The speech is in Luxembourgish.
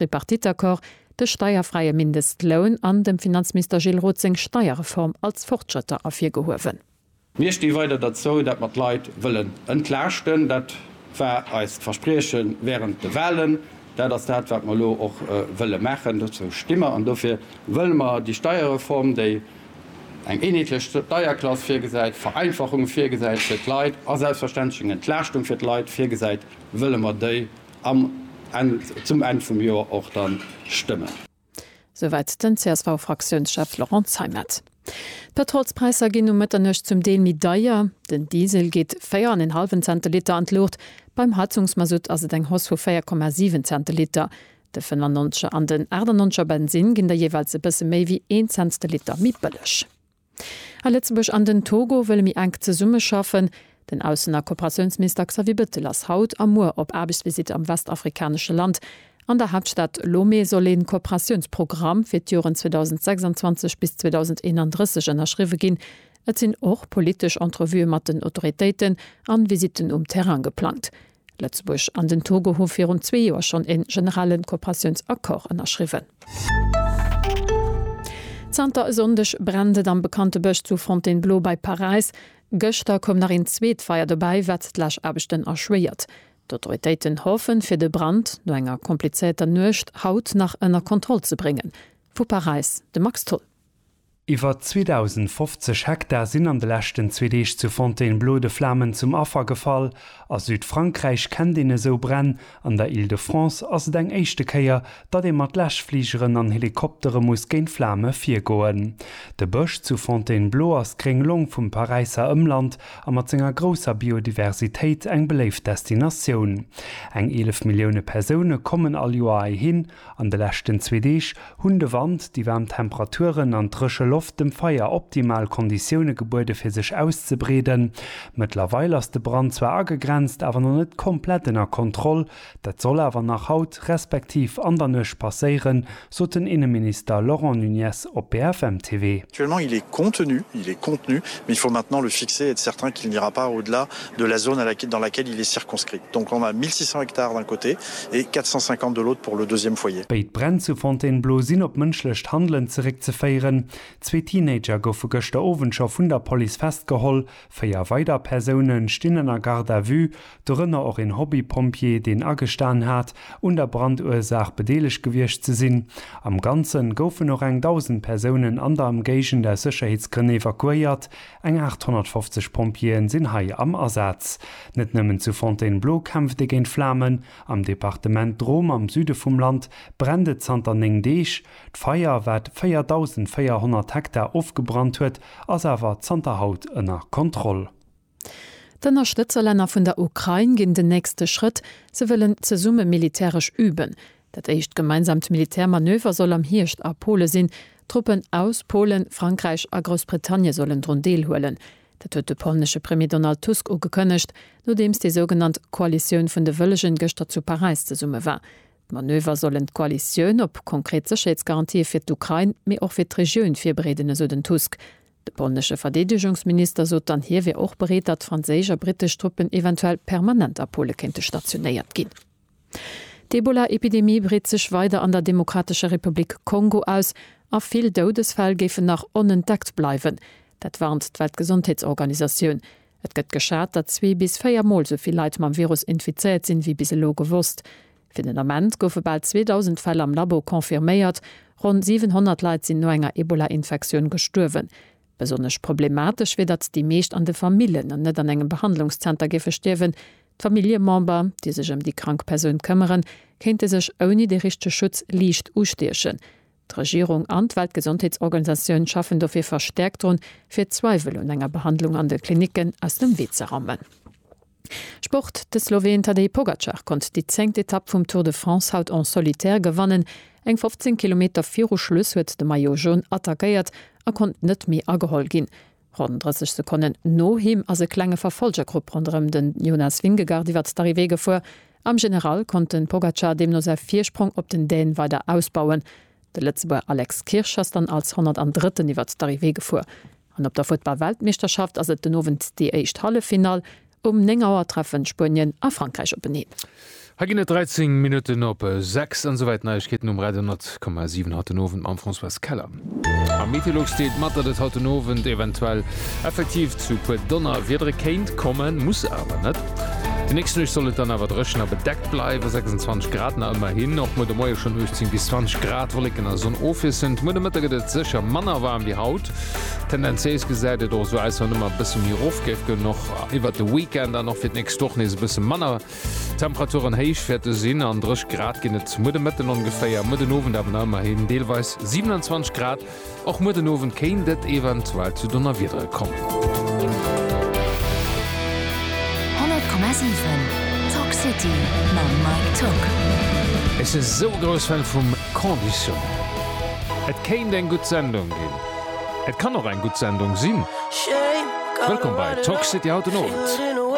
Tripartite-Accord, de steierfräie Mindestloun an dem Finanzminister Gilles Roth seng Steierreform als Fortschrëtter ervirgehuewen. Mir sti weider derzou, datt mer d'Leit wëllen entlaaschten. Dat war eist Versprieche wärend de Wahlen. Dat ass dat, wat mer elo och wëlle maachen. Dozou sti mer an dofir wëlle mer déi Steierreform, déi eng eenheetlech Steierklass virgesäit, Vereinfachunge virgesäit fir d'Leit a selbstverständlech eng Entlaaschtung fir d'Leit virgesäit, wëlle mer déi Am Enn, zum Enn vum Joer och dann stëmmen. Souwäit den CSV-Fraktiounschef Laurent Zeimet. D'Pëtrolspräisser ginn no Mëtternuecht zum Deel méi deier. Den Diesel geet 4 an en hallwen Cent de Liter an d'Luucht. Beim Heizungsmasutt ass et eng Hausse vu 4,7 Cent de Liter. De 95 er an den 98 er Bensinn ginn da jeeweils e bësse méi wéi een Cent de Liter méi bëlleg. A Lëtzebuerg an den Togo wëlle méi enk zesummeschaffen. Den Aussen a Kooperatiounsminister Xavier Bettel ass haut a muer op Aarbechtsvisitt am westafrikanesche Land. An der Haaptstad Lomé soll ee Kooperatiounsprogramm fir d'Joren 2026 bis 2031 ënnerschriwwe ginn. Et sinn och politesch Entrevuë mat den Autoritéiten an Visitten um Terrain geplangt. Lëtzebuerg an den Togo hu virun zwee Joer schonn e generelle Kooperatiounsaccord ënnerschriwwen. Zanter e Sonndeg brennt et am bekannte Bësch zu Fontainebleau bei Paräis. Gëschter koum nach een zweet Feier dobäi, wat d'Läschaarbechten erschwéiert. D'Autoritéiten hoffen, fir de Brand no enger komplizéierter Nuecht haut nach ënner Kontroll ze bréngen. Vu Paräis de Max Tholl. Iwwer 2.050 Hektar sinn an de leschten zwee Deeg zu Fontainebleau de Flamen zum Affer gefall. A Südfrankräich kennt een esou Bränn. An der Île-de-France ass et eng éischte Kéier, datt ee mat Läschfligeren an Helikoptere muss géint Flame virgoen. De Bësch zu Fontainebleau ass d'gréng Long vum Paräisser Ëmland a mat senger grousser Biodiversitéit eng beléift Destinatioun. Eng 11 Millioune Persoune kommen all Joer heihin. An de leschten zwee Deeg hunn de Wand, déi waarm Temperaturen an d'dréche Loft dem Feier optimal Konditioune gebuede fir sech auszebreeden. Mëttlerweil ass de Brand zwar agegrenzt, awer nach net komplett ënner Kontroll. Dat soll awer nach haut, respektiv an der Nuecht passéieren, sot den Inneminister Laurent Nunez op BFM TV. Actuellement il est contenu, il est contenu, mais il faut maintenant le fixer et être certain qu'il n'ira pas au-delà de la zone dans laquelle il est circonscrit. Donc on a 1 600 hectares d'un côté, et 450 de l'autre pour le deuxième foyer. Béid Bränn zu Fontainebleau sinn op mënschlecht Handelen zeréckzeféieren. Zwee Teenager goufe gëschter Owend scho vun der Police festgeholl. Véier weider Persoune stinn ënner Garde à vue, dorënner och een Hobby-Pompjee, deen agestan hat, un der Brandursaach bedeelegt gewiescht ze sinn. Am Ganze goufen och eng 1.000 Persounen an der Ëmgéigend aus Sécherheetsgrënn evakuéiert, Eng 850 Pompjeeën sinn hei am Asaz. Net nëmmen zu Fontainebleau kämpft ee géint Flamen. Am Departement Drôme am Süde vum Land brennt et zanter 9 Deeg. D'Feier, wat 4.400 Hektar ofgebrannt huet, ass awer zanter haut ënner Kontroll. D'Ënnerstëtzerlänner vun der Ukrain ginn den nächste Schrëtt, se wëllen zesumme militäresch üben. Dat éischt gemeinsamt Militär Manöver soll am Hierscht a Pole sinn. Truppen aus Polen, Frankräich a Groussbritannie sollen drun Deel huelen. Dat huet de polnesche Premier Donald Tusk ugekënnegt, nodeems déi sougenannt Koalitioun vun de Wëllegen gëschter zu Paräis zesumme war. D'Manöver sollen d'Koalitioun op konkret Sécherheetsgarantië fir d'Ukrain, mee och fir d'Regioun virbereeden, esou den Tusk. De polnesche Verdeedegungsminister sot dann, hie wier och bereet, datt franséisch a brittesch Truppen eventuell permanent a Pole kéinte stationéiert ginn. D'Ebola-Epidemie breet sech weider an der Demokratescher Republik Kongo aus a vill Doudesfäll géifen nach onentdeckt bleiwen. Dat warnt d'Weltgesondheetsorganisatioun. Et gëtt geschat, datt zwee bis véier Mol sou vill Leit mam Virus infizéiert sinn, wéi bis elo gewosst. Fir den Ament goufe bal 2.000 Fäll am Labo confirméiert. Ronn 700 Leit sinn no enger Ebola-Infektioun gestuerwen. Besonnesch problematesch wier, datt déi meescht an de Famillen an net an engem Behandlungszenter géife stierwen. D'Familljemember, déi sech ëm déi krank Persoun këmmeren, kéinte sech ouni de richtege Schutz liicht ustiechen. D'Regierung an d'Weltgesondheetsorganisatioun schaffen dofir verstäerkt drun, fir d'Zweiwel un enger Behandlung an de Klinicken aus dem Wee ze rammen. Sport, De Sloween Tadej Pogacar konnt déi zéngt Etapp vum Tour de France haut en solitaire gewannen. Eng 15 Kilometer viru Schluss huet de Maillot Jaune attackéiert a konnt net méi ageholl ginn. Ronn 30 Sekonnen no him ass e klenge Verfolgergrupp ronderëm de Jonas Vingegaard iwwert d'Arrivée gefuer. Am General konnt de Pogacar deemno säi Virsprong op den Däne weider ausbauen. De Lëtzebuerger Alex Kirsch ass dann als 103. iwwert d'Arrivée gefuer. An op der Futtball-Weltmeeschterschaft ass et den Owend déi éischt Halleffinall. Um 9 Auer treffen Spuenien a Frankräich openeen. Hei ginn et 13 Minutten op 6. An esouwäit d'Neiegkeeten um Radio 10,7 haut den Owend mam Françoise Keller. A Meteolux deelt mat, datt et haut den Owend eventuell effektiv zu e puer Donnerwiedere kéint kommen, muss awer net. Déi nächst Nuecht soll et dann awer dréchen a bedeckt bleiwen, 26 Grad nach ëmmerhin. Och muer de Moie schonn 18 bis 20 Grad, Wolleken a Sonn ofwiesselnd. Muer de Mëtte gëtt et sécher manner waarm wéi haut. Tendenziéis gesäit et och esou aus, wann ëmmer e bësse méi erof géif goen, och iwwert de Weekend an och fir d'nächst Woch nees e bësse manner. Temperaturen héich wäerte sinn an dréch Grad ginn et muer de Mëtten ongeféier, muer den Owend awer nach ëmmerhin deelweis 27 Grad. Och muer den Owend kéint et eventuell zu Donnerwiedere kommen. Ech si sou e grouss Fan vum. Conditionnel. Et kéint eng gutt Sendung ginn. Et kann och eng gutt Sendung sinn. Wëllkomm bei Toxity haut den Owend.